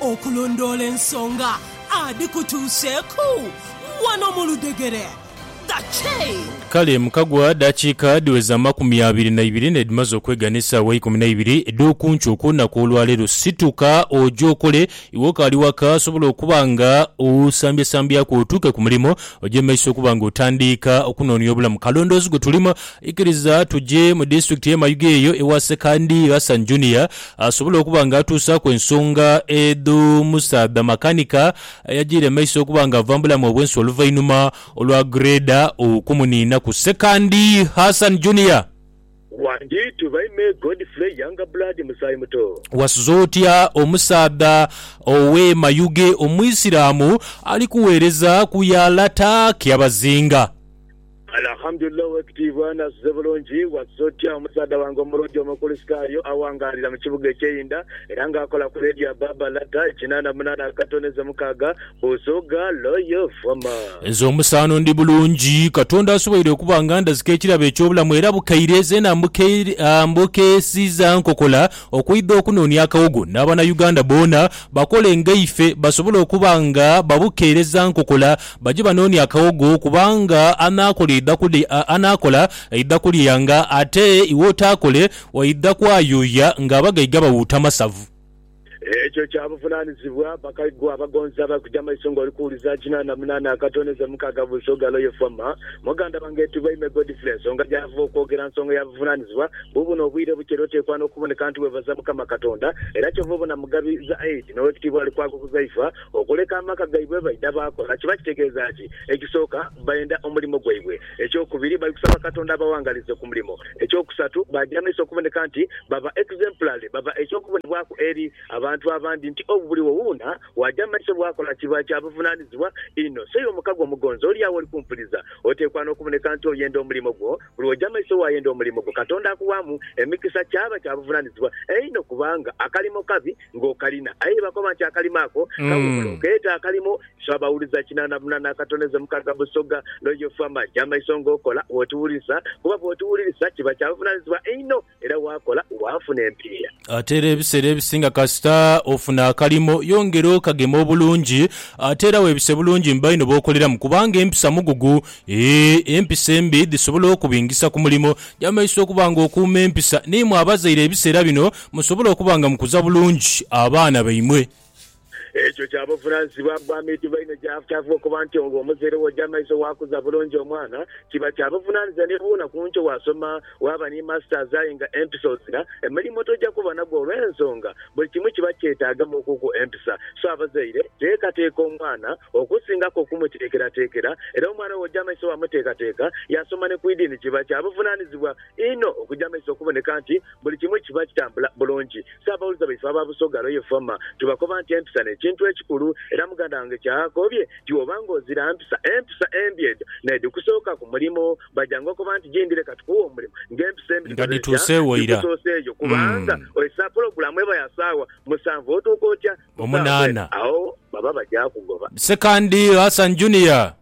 Okulondoola ensonga adhikutuuseeku wano mu ludhegere The Chain. Kale mukagwa dakiika dhiweza amakumi abiri na ibiri n'edhimaze okwega n'esaawa ikumi na ibiri edh'okunkyo okw'olunaku olwaleero. Situka oje okole. Iwe okaali waka osobola okuba nga osambyasambyaku otuuke ku mulimo oje mu maiso okuba nga otandiika okunoonia obulamu. Kalondoozi gwe tulimu. Ikiriza tuje mu disitulikiti y'e Mayuge eyo ewa Ssekandi Hassan Junior. asobole okuba nga atuusaaku ensonga edho musaadha makanika ayajiire emaiso okuba nga ava mu bulamu obwensi oluvainhuma olwa Grader okumuninhaku Sekandi Hassan Junior. Wanditu by me Godfrey Younger Blood Musaayi Muto. Wasuze otya omusaadha ow'e Mayuge Omwisilamu ali kuweereza ku ya Lata Kyabazinga? Alhamdulillah Owekitiibwa n'asuze bulungi. Wasuze otya omusaadha wange omulungi Omukulisitaayo awangaalira mu kibuga eky'einda era nga akola ku leediyo ya Baba Lata kinaana munaana akato n'eze mukaaga, Busoga Loyo Voma. Nze omusaano ndi bulungi. Katonda asoboire okuba nga andazika ekirabo eky'obulamu era bukaire zeena mbukeesiza nkokola okwidha okunoonia akawogo n'Abanauganda boona bakole nga ife basobole okuba nga babukeereza nkokola Baje banoone akawogo, kubanga anaakola aidha kulya, anaakola aidha kulyanga, ate iwe otaakole waidha kwayuuya ng'abagaiga bawuuta masavu. Ekyo kya buvunaanizibwa bakaiga abagonzi abali kuja mu maiso ng'oli kuwuliza kinaana na munaana akatono enze mukaaga buli sooga lwe yefuama. Muganda wange Tubaime Godfrey ensonga gy'ava okwogera nsonga ya buvunaanizibwa. Buubuno obwire bukye era oteekwa n'okuboneka nti weebaza Mukama Katonda. Era kyova obona Mugabi Zaid n'Owekitiibwa Alikwago Huzaifa Okuleka amaka gaibwe baidha baakola kiba kitegeeza ki? Ekisooka, baenda omulimo gwaibwe. Ekyokubiri, bali kusaba Katonda abaghangalize ku mulimo. Ekyokusatu, baaja amaiso okuboneka nti baba exemplary, baba eky'okubonebwaku eri abantu abandi nti obu buli wouna waaja amaiso bwakola kiba kya buvunaanizibwa inho. So iwe mukago omugonzi oli agho oli kumpuliza, oteekwa n'okuboneka nti oyenda omulimo gwo. Buli woja amaiso waayenda omulimo gwo, Katonda akuwaamu emikisa kyaba kya buvunaanizibwa einho kubanga akalimo kabi. ng'okalina. Aye ye bakoba nti akalimo ako kawumula okeeta akalimo ife abawuliza kinana munana akatoneze mukaga Busoga Royal Family amaiso ng'okola bw'otuwulirisa kuba bw'otuwulirisa kiba kya buvunaanyizibwa einho era waakola waafuna empiiya. Ate era ebiseera ebisinga kasita ofuna akalimo yongera okagema obulungi ate era weebise bulungi mu baino b'okoleramu kubanga empisa mugugu eeh empisa embi dhisobola okubingisa ku mulimo. Kya maiso okuba ng'okuuma empisa n'imwe abazaire ebiseera bino Musobole okuba nga mukuza bulungi abaana baimwe. Ekyo kya buvunanyizibwa bwa midibo inho gy'afukyafugha okuba nti ogho omuzaire we oja maiso waakuza bulungi omwana. Kiba kya buvunanyizibwa ni bwona ku nkyo waasoma waaba ni Masters aye nga empisa ozina, emirimu toja kuba nagwo olw'ensonga buli kimu kiba kyetaagamu okuku empisa. So abazaire teekateeka omwana okusingaku okumuteekerateekera era omwana we oja maiso waamuteekateeka yaasoma ni ku idiini kiba kya buvunanyizibwa. inho okuja amaiso okuboneka nti buli kimu kiba kitambula bulungi. Ssaabawulize baife aba Busoga Royal Former tubakoba nti empisa n'ekintu ekikulu era muganda wange ky'akoobye nti wooba ng'ozira mpisa, empisa embi edho n'edhikusooka ku mulimu baja ng'okoba nti gindi leka tukuwe omulimu ng'empisa embi nga dhitya dhituuseewo ira. dhikusoseeyo kubanga Mm. ozesa pulogulaamu eba ya saawa musanvu otuuka otya ku saawa mw'ena Omunaana. agho baba bagya kugoba. Ssekandi Hassan Junior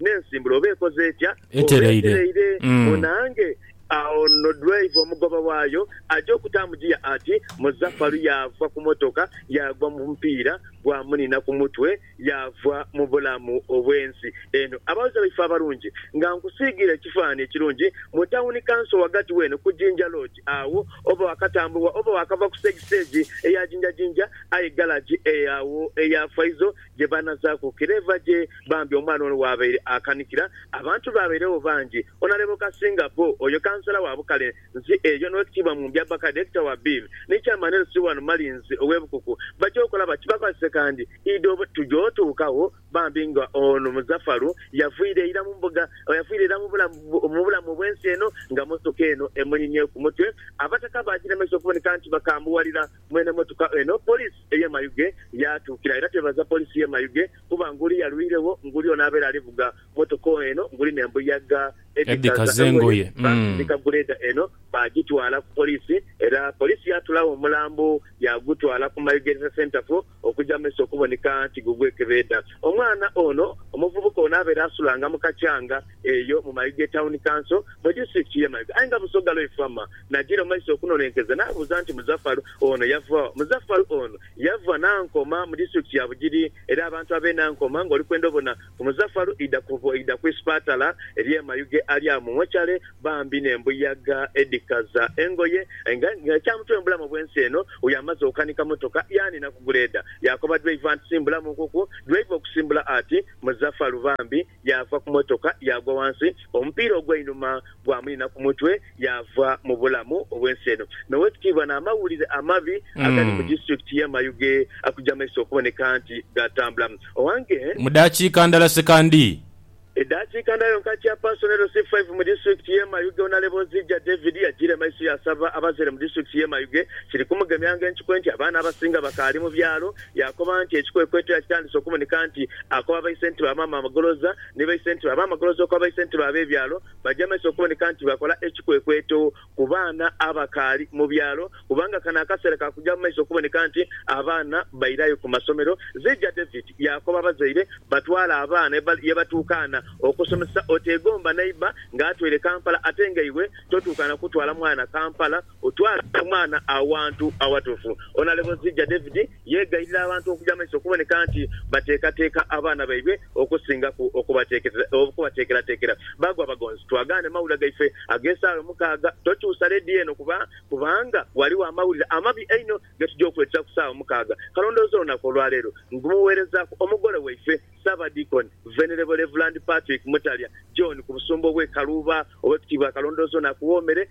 n'ensimbula oba ekoze etya, oba etereire, munaange. Agho no driver, omugoba waayo, aja okutaamu ggiya ati, Muzafaru yaava ku motoka yaagwa mu mupiira gwamuniina ku mutwe yaava mu bulamu obw'ensi eno. Abaghuliriza baife abalungi, nga nkusiigiire ekifaananhi ekirungi, mu tawuni kanso ghagati w'eno ku Jinja Lodge agho, oba waakatambuwa oba waakava ku stage stage eya Jinja Jinja, aye galagi eyo agho eya Faizo gye baanazaaku kireeva gye. Bambi omwana ono waabaire akanikira, abantu baabairegho bangi. Onalebo Kasinga Bo, oyo Kansala wa Bukale nsi eyo n'Owekitiibwa Mumbya Bbaka, Direkita wa Bill ni Chairman LC wano Malinzi ow'e Bukuku baja okola bati bakozese kandi ido. Tuja otuukagho bambi nga ono Muzafaru yaviira ira mu mbuga, yaviira ira mu bulamu obw'ensi eno nga mmotoka eno emuninye ku mutwe. Abataka baagiremesa okuboneka nti bakaambuwalira. Mwene motoka eno poliisi ey'e Mayuge yaatuukira era twebaza poliisi y'e Mayuge kuba nguli yalwiregho nguli ono abeera ali vuga motoka eno nguli n'embuyaga edhikaza engoye. Baasindika guleeda eno baagitwala ku poliisi era poliisi yaatulagho omulambo yaagutwala ku Mayuge Health Centre for okuja maiso okuboneka nti gugwekebeedha. Omwana ono omuvubuka ono abeera asulanga mu Kakyanga eyo mu mayiga e Town Council mu Disitulikiti ye Mayiga aye nga Busoga Loi Farmer najira maiso okunonenkeza nabuuza nti Muzafar ono yava wa? Muzafar ono yava Nankoma mu Disitulikiti ya Bugiri era abantu abe Nankoma nga olikwenda obona Omuzafalu idha kuvo idha ku isipatala erye Mayuge ali agho mu mochale bambi ne mbuyaga edhikaza engoye nga nga ekyamutwe mubulamu obwensi eno uyo amaze okanika motoka yani na ku guleeda yakoba driver nti simbulamu nkukwo driver okusimbula ati Muzafalu bambi yava ku motoka yagwa wansi omupiira ogweinuma gwa munina ku mutwe yaava mu bulamu obw'ensi eno. N'owekitiibwa n'amawulire amabi agali mu disitulikiti ye Mayuge akugya maiso okuboneka nti gaatambula. Owange. Mu daakiika ndala sekandii. Edaakiika ndala yonka Chairperson LC five mu disitulikiti ye Mayuge Onalebo Nzija David yajiire maiso yaasaba abazaire mu disitulikiti ye Mayuge kiri kumugemya ng'enkikwe nti abaana abasinga bakaali mu byalo. Yaakoba nti ekikwekweto yakitandise okuboneka nti akoba baise nti ba maama amagoloza ni baise nti ba maama goloza okoba baise nti ba b'ebyalo. baja mu maiso okuboneka nti bakola ekikwekweto ku baana abakaali mu byalo kubanga kano akaseera ka kuja mu maiso okuboneka nti abaana bairayo ku masomero. Zija David yaakoba abazaire batwale abaana ye batuukaana okusomesa. Oteegomba neighbour nga atweire Kampala ate nga iwe totuukaana kutwala mwana Kampala. Otwale omwana awantu awatuufu. Onalebozi ja David yeegayirira abantu okuja mumaiso okuboneka nti bateekateeka abaana baibwe okusingaku okubateekerateekera. Baagwa Bagonzi, twagaane mawulire gaife ag'esaawa mukaaga. Tokyusa leediyo eno kuba kubanga ghaligho amawulire amabi einho ge tuja okuleetera ku saawa mukaaga. Kalondoozi olunaku olwaleero ngumuweerezaaku Omugole waife Ssaabadiikoni Venerable Rev. Patrick Mutalya John ku Busumba obw'e Kaluuba. Owekitiibwa Kalondoozi ono akuwoomere.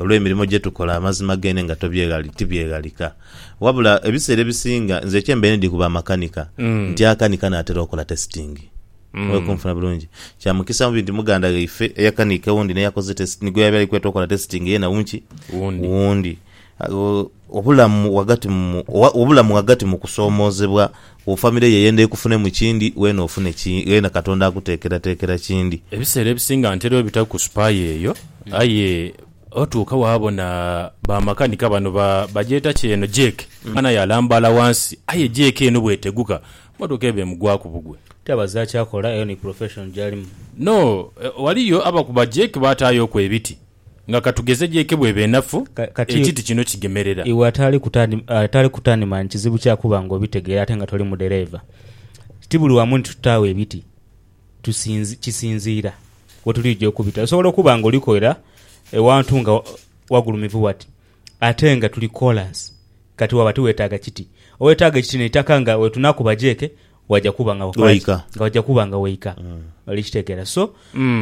Olw'emirimo gye tukola, amazima geene nga tobyeghali, tibyeghalika. Wabula, ebiseera ebisinga nze kye mbaire ndi ku bamakanika, nti akanika naatera okola tesitingi. Oli kunfuna bulungi? Kya mukisa mubi nti muganda ghaife eyakanika ewundi n'eyakoze tesi, nigwe yabaire ali kweta okola tesitingi, yena wu ki? Wundi. Wundi. Obulamu ghagati mu obulamu ghagati mu kusoomoozebwa kwo famire yo ey'enda ekufunemu kindi, weena ofune ki, weena Katonda akuteekerateekera kindi. Ebiseera ebisinga ntera obita ku supaaya eyo aye otuuka waabona ba makanika bano ba bagyeta ki eno jeeke, omwana aye alambaala wansi aye jeeke eno bw'eteguka mmotoka eba emugwaku bugwe. Kyabaza kyakola, eyo ni profession gy'alimu. No, ghaliyo abakuba jeeke baataayooku ebiti. Nga ka tugeze jeeke bw'eba enafu, Ka- kati ekiti kino kigemerera. Iwe ataali kutani, ataali kutani mani kizibu kya kuba ng'obitegeera ate nga toli mudhereeva. Ti buli wamu nti tutaagho ebiti, tusinzi, kisinziira we tulija okubita. Osobola okuba ng'olikolera ewantu nga wa- wagulumivu wati, ate nga tuli koolaasi. Kati waba tiweetaaga kiti. Oweetaaga ekiti n'eitaka nga we tunakuba jeeke Waja kuba nga wakola ki? Waika. Nga waja kuba nga waika. Oli kitegeera. So,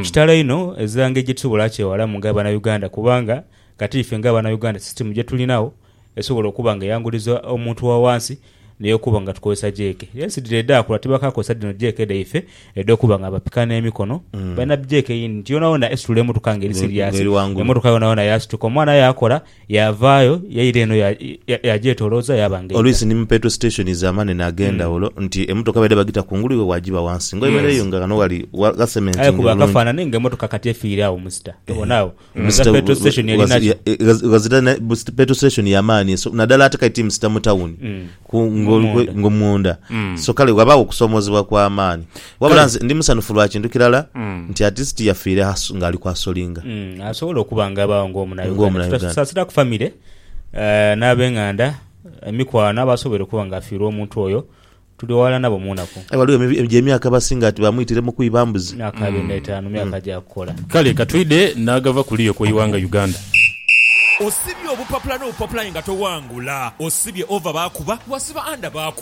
kitalo inho ezira ngeri gye tusobola akyewalamu nga Abanauganda kubanga kati ife nga Abanauganda system gye tulinagho esobola okuba nga eyanguliza omuntu wa wansi n'eyokuba nga tukozesa jeeke. Yes, dhire edhaakula tibakaakozesa dhino jeeke dhaife edh'okuba nga bapika n'emikono. Balina jeeke yindi nti yoonayoona esitula emotoka ngeri Nga- serious. ng'eri ghangulu. Emotoka yoonayoona yaasituka. Omwana aye akola Yaavaayo yaira eno yaagyetolooza yaaba nga eidha. Oluisi ni mu petrol stations amanene ag'endhawulo nti emotoka baidha bagita kungulu iwe waagiba wansi nga oyemereireyo nga ghano ghali gha cementinge Aye kuba bulungi. akafaanane nga emotoka kati efiire agho musita. Tobona agho? Musita Ghazira petrol station eri nakyo. Ghazira na petrol station ya maani eso naddala ate kati ti musita mu tawuni ku nga oli munda. So kale ghabaagho okusoomoozebwa kwa maani. Wabula Kale. nze ndi musanhufu lwa kintu kirala Mm. nti at least yafiire asu- ng'ali ku asolinga. Mm, asobola okuba nga abaawo ng'omunauganda Ng'omunauganda. tutasaasira ku famire eh, n'abeng'anda emikwano abasobere okuba ng'afiirwa omuntu oyo tuli wala nabo mu nnaku Aye waliwo emi- emi- gy'emyaka abasinga ati bamwitire mu kwiba mbuzi. myaka abiri n'etaano myaka gyakukola Kale katwide n'agava kuli okwo iwanga Uganda. Osibye obupapula n'obupapula aye nga towangula. Osibye over baakuba, wasiba under baakuba.